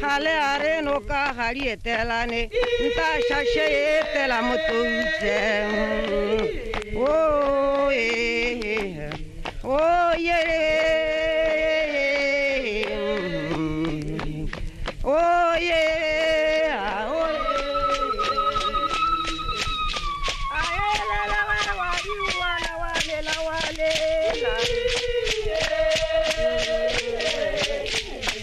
gale a re noka ga di etelane nta shashe e etela motoutle o o ye o ye Yeah.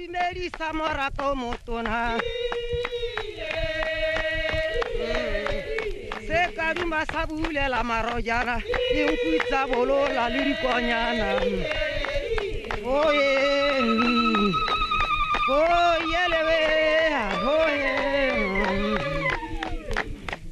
Imelisa morato motona se ka duma sa bulela marojana dinku tsa bolola le dikonyana oye oye lebeya oye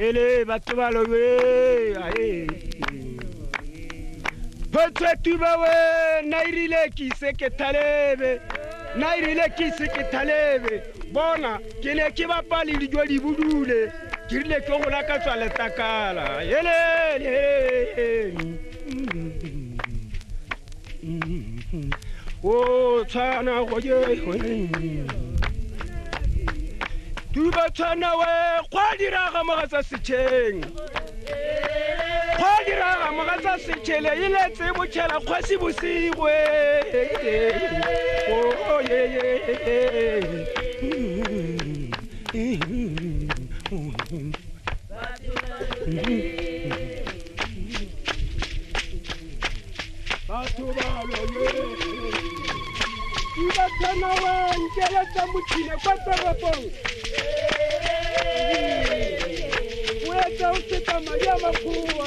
Ele batho ba lobe ae. Photse tuba we na irile ke ise ke thalebe. Na irile ke ise ke thalebe. Bona ke ne ke bapa le dijo di budule. Ke rile ke go laka tswa letakala. Ele ele. o tshwana go je tuba tshwana we kgwa diraga mogatsa setšheng kgwa diraga mogatsa setšhele e letse botšhela kgwasi bosigo e batho ba loye Iba tana wa njela tsa motšhine kwa toropong o etsa o seta madi a makgowa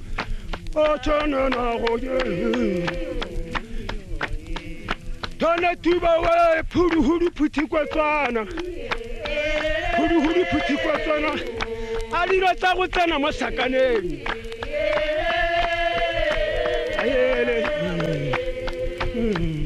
Tona Tuba wa Phuduhudu Phuthi kwa Tswana. Phuduhudu Phuthi kwa Tswana. A dilo tsa go tsena mo sakaneng. Ayele. Mm.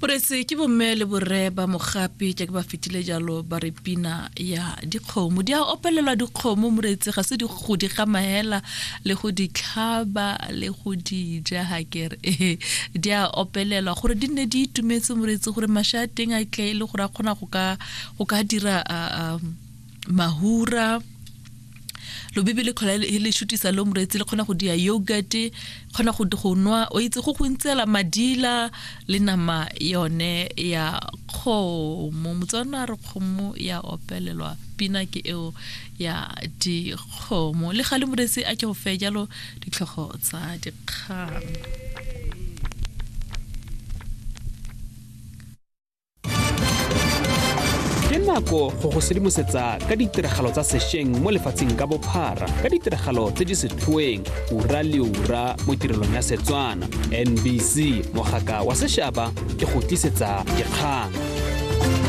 porese ke bomme le borre ba mogapi jaaka ba fetile jalo ba re pina ya dikgomo di a opelelwa dikgomo moreetse ga se di go di gamaela le go di tlhaba le go di ja ga kere ee di a opelelwa gore di nne di itumetse moreetse gore masha a teng a tle e le gore a kgona go ka dira um mahura lobibi le kgola le shutisa lo moretsi le kgona go dia yogurt kgona go go nwa o itse go go ntsela madila le nama yone ya kgomo motswana re kgomo ya opelelwa pina ke eo ya dikgomo le ga le moretsi a ke go fe jalo ditlhogo tsa dikgang ke nako go go sedimosetsa ka ditiragalo tsa sešweng mo lefatsheng ka bophara ka ditiragalo tse di setlhoeng ura le ura mo tirelong ya setswana nbc mogaka wa sešaba ke go tlisetsa dikgang